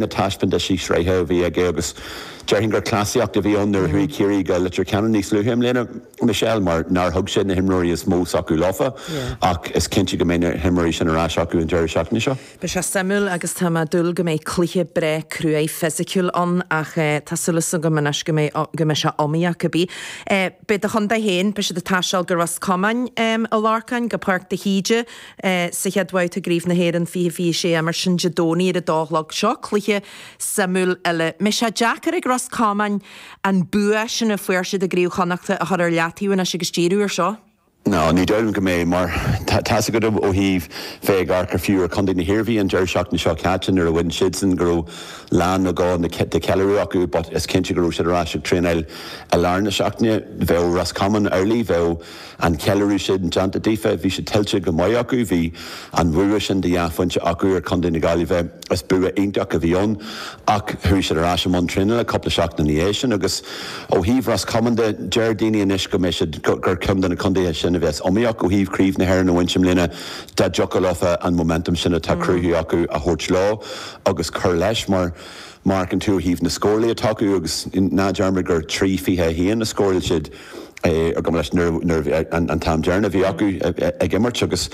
na taispeántaisí sraithe a bhí aige agus déarfainn gur cleasaíocht a bhí ann nuair a chuaigh Ciarraí go Leitir Ceanainn níos luaithe i mbliana, Michelle, mar nár thug sé na himreoirí is mó s'acu leofa ach is cinnte go mbeidh na himreoirí sin ar ais acu an deireadh seachtaine seo. Beidh sé suimiúil agus tá mé ag dúil go mbeidh cluiche breá cruaidh fisiciúil ann ach tá súil is agam anois go mbeidh go mbeidh sé iomaíoch. Beidh do chontae féin, beidh siad ag taisteal go Ros Comáin, a Lorcáin, go Páirc de hÍde, sa chéad bhabhta i gCraobh na hÉireann fiche, fiche sé, imreofar sin Dé Domhnaigh ar a dó a chlog. Seo cluiche suimiúil eile. An mbeidh sé deacair ag Ros Comáin an bua sin a fuair siad i gCraobh Chonnacht a chur ar leataobh anois agus díriú ar seo. No, ní dóigh liom go mbeidh, mar tá a fhios agat ó thaobh bheith ag amharc ar fiú ar Chontae na hIarmhí an deireadh seachtaine seo caite nuair a bhain siadsan go raibh lá nó dhó de cheiliúradh acu but is cinnte go raibh siad ar ais ag traenáil i lár na seachtaine. Bheadh Ros Comáin amhlaidh, bheadh. an ceiliúradh sin déanta daofa. Bhí sé tuillte go maith acu. Bhí an bhua sin de dhá phointe acu ar Chontae na Gaillimhe. Is bua iontach a bhí ann. Ach chuaigh siad ar ais i mbun traenála cúpla seachtain ina dhiaidh sin agus ó thaobh Ros Comáin de, deir daoine anois go mbeidh siad, gur ceann de na contaetha sin a bheas iomaíoch ó thaobh Chraobh na hÉireann a bhaint i mbliana dá dtiocfadh leofa an momentum sin atá cruthaithe acu a thabhairt leo agus cur leis mar Amharcann tú ó thaobh na scórálaithe atá acu agus ná dearmad gur trí fiche a haon a scóráil siad ar Ghaillimh nuair a bhí an t-am deireanach a bhí acu ag imirt agus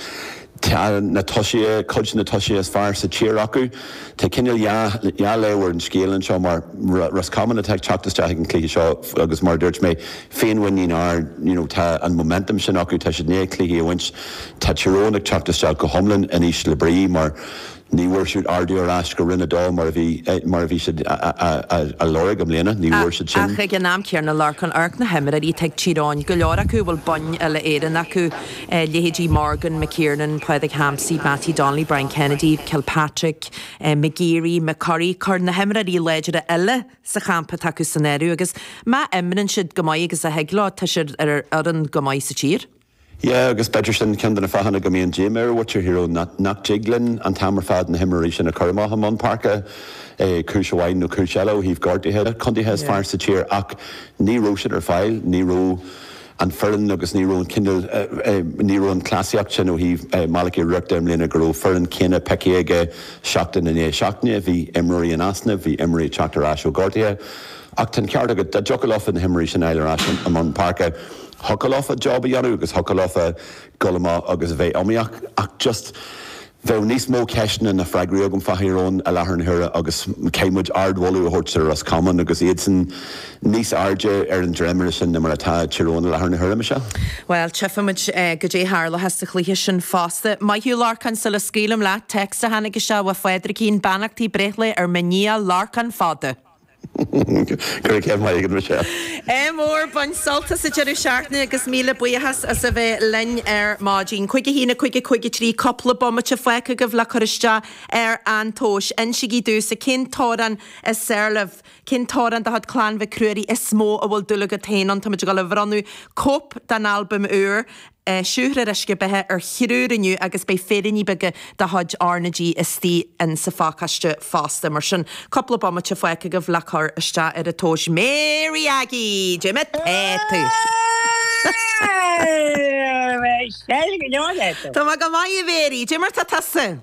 tá na tosaithe, cuid de na tosaithe is fearr sa tír acu. Tá cineál dhá dhá léamh ar an scéal anseo mar Ros Comáin atá ag teacht isteach ag an cluiche seo agus mar a dúirt mé féinmhuinín ard you know tá an momentum sin acu tá siad i ndiaidh cluichí a bhaint tá Tír Eoghain ag teacht isteach go hiomlán in ísle brí mar Ní bhfuair siad ardú ar ais go Roinn 2 mar a bhí siad á lorg i mbliana, ní bhfuair siad sin. Ach ag an am céanna, a Lorcáin, amharc na himreoirí atá ag Tír Eoghain, go leor acu a bhfuil boinn uile-Éireann acu, leithéidí Morgan, McKernan, Pádraig Hampsey, Mattie Donnelly, Brian Kennedy, Kilpatrick, McGeary, McCurry, cuir na himreoirí láidre eile sa champa atá acu san áireamh, agus má imríonn siad chomh maith agus a thig leo, tá siad ar fhoireann go maith sa tír. Yeah, agus b'fhéidir sin ceann de na fáthanna go mbíonn díomá ar mhuintir Thír Eoghain, nach nach dtig linn an t-am ar fad na himreoirí sin a chur amach i mbun páirce, eh, cúis amháin nó cúis eile ó thaobh gortuithe le contaetha is Yeah. fearr sa tír ach ní raibh siad ar fáil, ní raibh an fhoireann agus ní raibh an cineál, eh, eh, ní raibh an chleasaíocht sin ó thaobh, eh, Malachy O'Rourke de i mbliana go raibh foireann chéanna pioctha aige seachtain i ndiaidh seachtaine, bhí imreoirí in easnamh, bhí imreoirí ag teacht ar ais ó ghortuithe. Ach tá an ceart agat, dá dtiocfadh leofa na himreoirí sin a fháil ar ais i mbun páirce, thiocfadh leofa job a dhéanamh agus thiocfadh leofa dul amach agus a bheith iomaíoch. Ach just, bheadh níos mó ceisteanna ná freagraí agam fá Thír Eoghain i láthair na huaire agus caithfidh muid ardmholadh a thabhairt do Ros Comáin agus iadsan níos airde ar an dréimire sin ná mar atá Tír Eoghain i láthair na huaire, Michelle. Bhuel, tchífidh muid goidé tharlóidh sa chluiche sin fosta. Maith thú, Lorcán, sula scaoilim leat, text a tháinig isteach ó Phádraigín, Beannachtaí breithlae ar mo nia Lorcán Fada! Go raibh céad maith agat Michelle. Ádh mór, bain sult as an deireadh seachtaine agus míle buíochas as a bheith linn ar maidin. Cúig a haon, a cúig, a cúig a trí, cúpla bomaite fágtha agaibh le cur isteach ar an tomhas. Insígí domhsa cén t-amhrán is fearr libh. Cén t-amhrán de chuid Clann Mhic Ruairí is mó a bhfuil dúil agat féin ann. Táimid ag dul a bhronnadh cóip dá n-albam úr. Siúthar an t-uisce beatha ar thriúr inniu agus beidh féiríní beaga de chuid RnaG istigh insa phacáiste fosta. Mar sin, cúpla bomaite fágtha agaibh le cur isteach ar an tomhas. Mary Aggie! Goidé mar atá tú! Tá mé go maith, a Mhéirí. Goidé mar atá tusa!